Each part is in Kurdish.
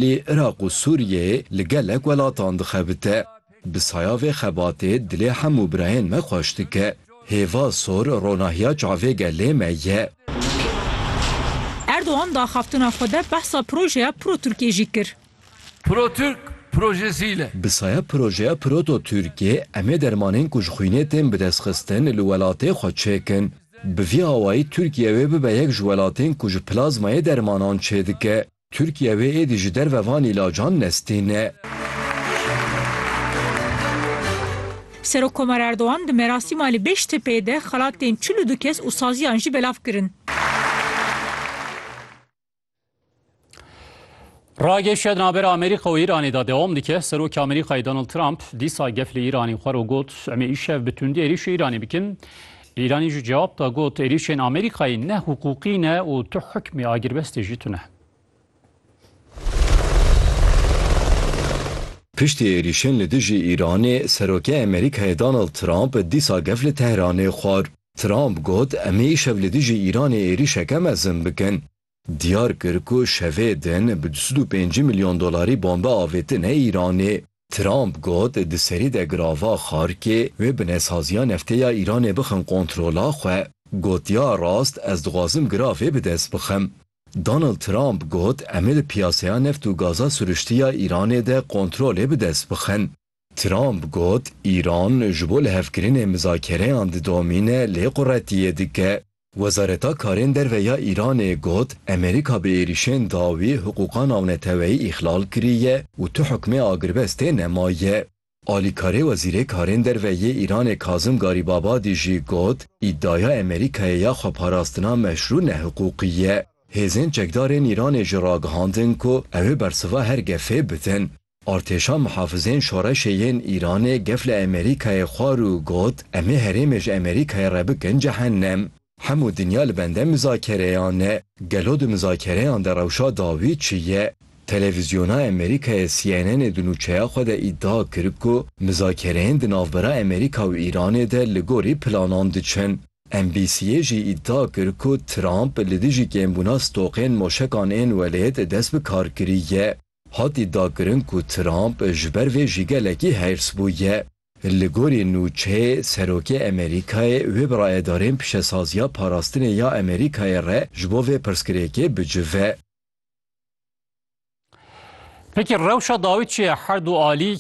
Lê Iraq û Sûriyê li gelek welatan dixebite. Bi saya vê xebatê dilê hemû birayên me xweş dike. Hêva sor ronahiya çavê gelê me ye. Erdogan di axaftina xwe de behsa projeya Pro-Tirkê jî kir. Pro-Tirk projesi ile. Bi saya projeya Proto-Tirkê em ê dermanên ku ji xwînê tên bidestxistin li welatê xwe çêkin. Bi vî awayî Tirkiye wê bibe yek ji welatên ku ji plazmayê dermanan çêdike. Tirkiye wê êdî ji derve van îlacan nestêne. Serokkomar Erdogan di merasîma li Bêştepeyê de xelatên çil û du kes û saziyan jî belav kirin. Rageşiya di navbera Amerîka û Îranê de dewam dike. Serokê Amerîkayê Donald Trump dîsa gef li Îranê xwar û got, Em ê îşev bi tundî êrîşê Îranê bikin. Îranî jî cewab da got, êrîşên Amerîkayê ne hiqûqî ne û tu hikmê agirbestê jî tune. Piştî êrîşên li dijî Îranê, Serokê Amerîkayê Donald Trump dîsa gef li Tehranê xwar. Trump got, Em ê îşev li dijî Îranê êrîşeke mezin bikin. diyar kir ku şevê din bi du sed û pêncî milyon dolarî bombe avêtine Îranê. Trump got di serî de girava Xarkê wê binesaziya neftê ya Îranê bixin kontrola xwe. Gotiya rast ez dixwazim giravê bi dest bixim. Donald Trump got em ê di piyaseya neft û gaza siruştî ya Îranê de kontrolê bi dest bixin. Trump got, Îran ji bo lihevkirinê mizakereyan didomîne lê quretiyê dike. Wezareta Karên Derve ya Îranê got, Amerîka bi êrîşên dawî hiqûqa navneteweyî îxlal kiriye û tu hukmê agirbestê nemaye. Alîkarê Wezîrê Karên Derve yê Îranê Kazim Garîbabadî jî got, Îdaya Amerîkayê ya xweparastina meşrû nehiqûqî ye. Hêzên çekdarên Îranê jî ragihandin ku ew ê bersiva her gefê bidin. Artêşa Mihafizên Şoreşê yên Îranê gef li Amerîkayê xwar û got, Em ê herêmê ji Amerîkayê re bikin cehennem. Hemû dinya li bende mizakereyan e. Gelo di mizakereyan de rewşa dawî çi ye? Televîzyona Amerîkayê CNNê di nûçeya xwe de îdia kir ku mizakereyên di navbera Amerîka û Îranê de li gorî planan diçin. NBC'ê jî îdia kir ku Trump li dijî kêmbûna stoqên moşekan ên welêt dest bi karkirî ye. Hat îdiakirin ku Trump ji ber vê jî gelekî hêrs bûye. Li gorî nûçeyê, Serokê Amerîkayê wê bi rayedarên pişesaziya parastinê ya Amerîkayê re ji bo vê pirsgirêkê bicive. Peki rewşa dawî çi ye? Her du alî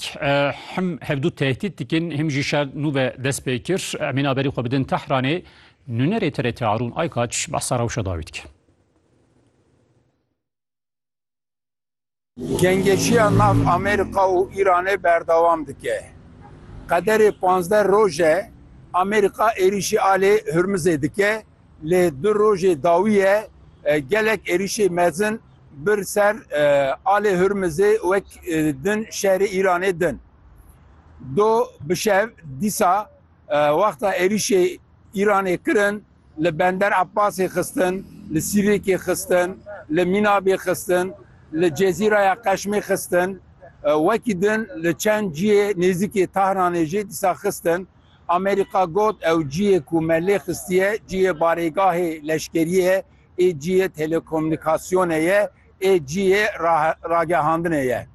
him hevdû tehdît dikin, him jî şer nû ve dest pê kir. Em ên aberî xwe bidin Tehranê. Nûnerê TRT Arûn Aykaç behsa rewşa dawî dike. Gengeşiya nav Amerîka û Îranê berdewam dike. Qederê pazdeh roj e Amerîka êrîşî alê Hurmizê dike lê du rojê dawî ye gelek êrîşê mezin bir ser alê Hurmizê wek din şerê Îranê din. Do bi şev dîsa wexta êrîşê Îranê kirin, Li Bender Abbasê xistin, li Sîrêkê xistin, li Mînabê xistin, li Cezîraya Qeşmê xistin, wekî din li çend ciyê nêzîkê Tahranê jî dîsa xistin. Amerîka got ew ciyê ku me lê xistiye ciyê barêgahê leşkeriyê ye, ê ciyê telekomûnîkasyonê ye, ê ciyê ragehandinê ye.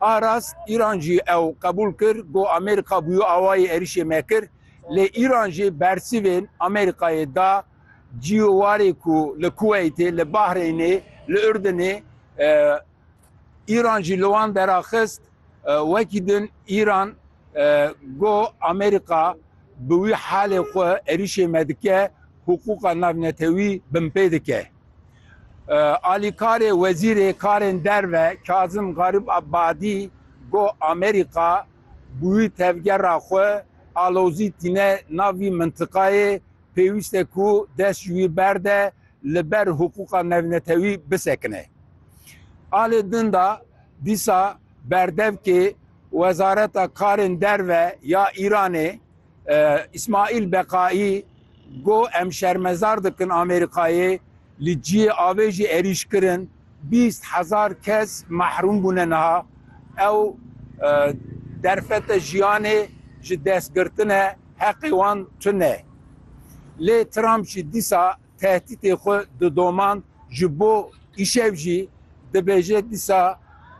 A rast Îran jî ew qebûl kir, got Amerîka bûye awayî êrîşê me kir. Lê Îran jî bersîvên Amerîkayê da cîyo warê ku li Kuweytê, li Bahreynê, li Urdinê Îran jî li wan deraxist. Wekî din Îran got Amerîka bi wî halê xwe êrîşê me dike, hiqûqa navnetewî binpê dike. Alîkarê Wezîrê Karên Derve Kazim Garîb Abadî got Amerîka, Bi wî tevgera xwe alozî tîne nav vî mintiqayê, pêwîst e ku dest ji wî berde li ber hiqûqa navnetewî bisekine. Alê din de dîsa berdevkê Wezareta Karên Derve ya Îranê Îsmaîl Beqaî got, Em şermezar dikin Amerîkayê li cihê avê jî êrîş kirin, bîst hezar kes mehrûm bûne niha. Ew derfete jiyanê ji dest girtine, heqê wan tune. Lê Trump jî dîsa tehdîtê xwe didomand ji bo îşev jî dibêje dîsa